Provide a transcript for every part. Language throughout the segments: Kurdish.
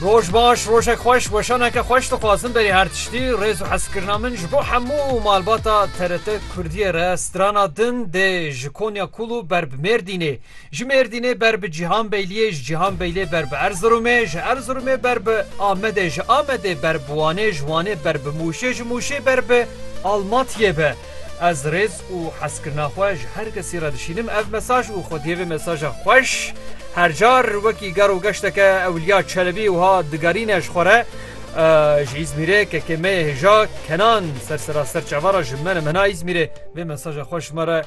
Roj baş, rojek xweş, weşaneke xweş dixwazim berî her tiştî, rêz û hezkirina min ji bo hemû malbata TRT Kurdiyê re strana din dê ji Konya Kulu ber bi Mêrdînê, ji Mêrdînê ber bi Cîhanbeyliyê, ji Cîhanbeyliyê ber bi Erziromê, ji Erziromê ber bi Amedê, ji Amedê ber bi Wanê, ji Wanê ber bi Mûşê, ji Mûşê ber bi Almatiyê be. Ez rêz û hezkirina xwe ji her kesî re dişînim. Ev mesaj û xwediyê vê mesaja xweş her car wekî ger û geşteke Ewliya Çelebî wiha digerîne ji xwe re, Ji Îzmîrê kekê me yê hêja Kenan sersera ser çavara ji me ne mena Îzmîrê vê mesaja xwe ji me re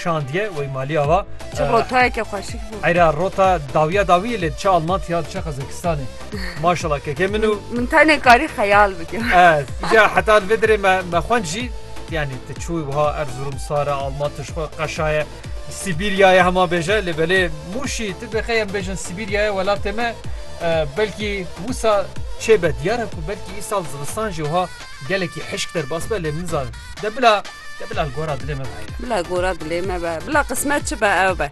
şandiye. Wey malî ava. Çi rotayeke xweşik bû. Eyra rota dawiya dawiyê lê diçe Almantya, diçe Qazakistanê. Maşallah keke min û Min tenê karî xeyal bike. Ez ja heta li vê dirê me me xwend jî yani te çûyî wiha Erzurum sare Alman tişxwe qeşaye Sîbîryayê hema bêje lê belê Mûşî tu bêxey em bêjin Sîbîryayê welatê me belkî wisa çêbe diyare ku belkî îsal zivistan jî wiha gelekî hişk derbas be lê min zanim de bila de bila li gora dilê me be. Bila gora dilê me be bila qismet çi be ew be.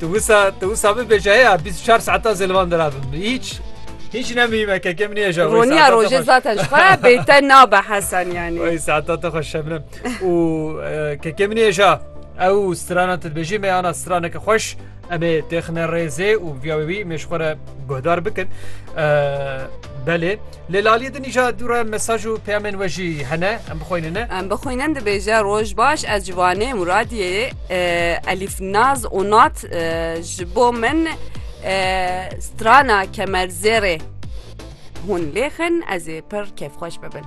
Tu wisa tu wisa bibêje heya bîst û çar saetan zê li van dira bin hîç hîç nemîme keke min hêja wê Roniya saetan te rojê xweş- zaten ji xwe bête nabe Hesen yani. Oy saetan te xweş şebnem û e, keke min hêja ew strana te dibêjî me ana straneke xweş em ê têxine rêzê û viya wî wî mêj xwe re guhdar bikin E, belê Lê li aliyê din îcar dû re mesaj û peyamên we jî hene, em bixwînine. Em bixwînin dibêje roj baş ez ji Wanê Muradiyê ye Elîf Naz Onat ji bo min strana kemerzêrê hûn lêxin ez ê pir kêfxweş bibin.